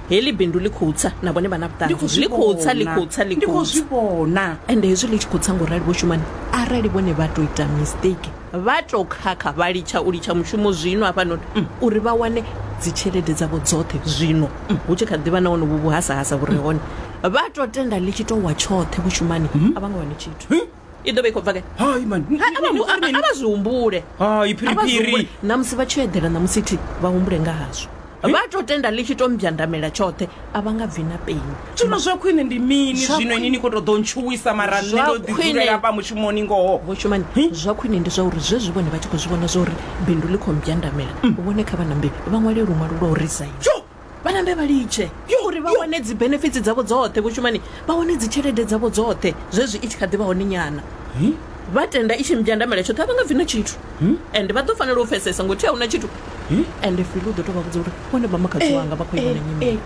heli bindu ḽi khou tsa na vhone vha na Ndi khou vhuṱanzi zwi ḽi khou tsa ḽi vhona. khou tsa ḽi Ndi khou khou zwi tsa vhona ende hezwi ḽi tshi khou tsa ngo rali vho shumani arali vhone vha tou ita mistake vha tou khakha vha litsha u litsha mushumo zwino hafhanoni uri vha wane dzitshelede dzavho dzoṱhe zwino hu tshi kha ḓivha na wonovhu vhuhasahasa vhu re hone vha tou tenda ḽi tshi tou wa tshoṱhe vhushumani a vha nga wani tshithu i ḓo vha i khou bva ke hai mani Ha, a vha mbu- a- a vha zwi humbule hai A vha zwi humbule. phiriphiri na musi vha tshi yo eḓela na musi thi vha humbule nga hazwo vha to tenda ḽi tshi to mbyandamela tshoṱhe a vha nga bvi na peni zwino zwa khwine ndi mini Zwa zwino ini khwine- ni khou tou ḓo ntshuwisa mara nṋe Zwa ndo ḓi khwine- dzulela hafha mushumoni ngoho vho shumani zwa khwine ndi zwa uri zwezwi vhone vha tshi khou zwi vhona zwa uri bindu ḽi khou mbyandamela vhone kha vha nambe vha ṅwale luṅwalo lwa u resign jo vhanambe vha litshe uri vha wane dzi benefits dzavho dzoṱhe vho shumani vha wane dzi tshelede dzavho dzoṱhe zwezwi i tshi kha ḓi vha hone nyana vha tenda i tshi mbyandamela tshoṱhe a vha nga bvi na tshithu and vha ḓo fanela u pfesesa ngothi a huna tshithu and fili u ḓo tou vha vhudza uri vhone vha makhadzi wanga vha khou ivhona nyimele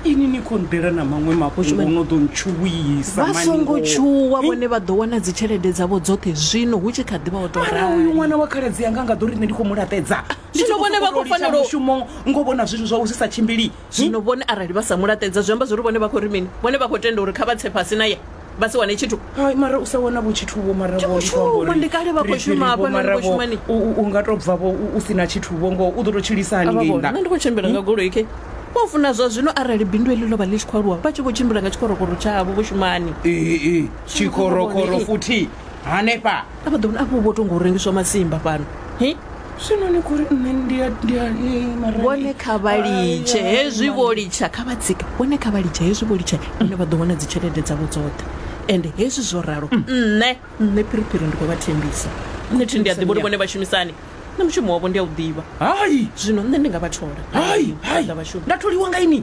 ini ni khou ndela na maṅwe mafhungo no ḓo ntshuwisa vha songo tshuwa vhone vha ḓo wana dzi tshelede dzavho dzoṱhe zwino hu tshi kha ḓi vha o tou rali uyu ṅwana wa khaladzi yanga nga ḓo ri nṋe ndi khou mu laṱedza Ndi tshi zwino khou vhone vha sokou khou tou litsha fanela u- mushumo ngo vhona zwithu zwau zwi sa tshimbili zwino vhone arali vha sa mu laṱedza zwi amba zwori vhone vha khou ri mini vhone vha khou tenda uri kha vha tse fhasi naye vha si wane tshithu Hai, mara u sa wana vho tshithu vho mara Tshi vho khou ndi khou amba shuma, uri ndi kale vha khou phiri-phiri shuma hafha, vho, nṋe ndi mara khou vho, shuma ni. u- u- u nga tou bva vho u- u si na tshithu vho ngo u ḓo tou tshilisa hani ngei nṋe nda ndi khou tshimbila nga goloi ke vho funa zwa zwino arali bindu eḽi ḽo vha ḽi tshi khou aluwa vha tshi vho tshimbila nga tshikorokoro tshavho vho shumani Ee, ee, tshikorokoro futhi hanefha a vha ḓo vhona afho vho to ngo rengiswa masimba fhano hi zwino ni khori nṋe ndi a ndi a eh, mara vhone kha vha litshe Ai, ai, hezwi mara- vho litsha kha vha tsika vhone kha vha litshe hezwi vho litsha nṋe vha ḓo wana dzi tshelede dzavho dzoṱhe ende hezwi zwo ralo nṋe nṋe phiriphiri ndi khou vha thembisa nṋe thi ndi a ḓivha uri vhone vha shumisani nṋe mushumo wavho ndi a u ḓivha hai zwino nṋe ndi nga vha thola hai hai Nda vha shuma. nda tholiwa nga ini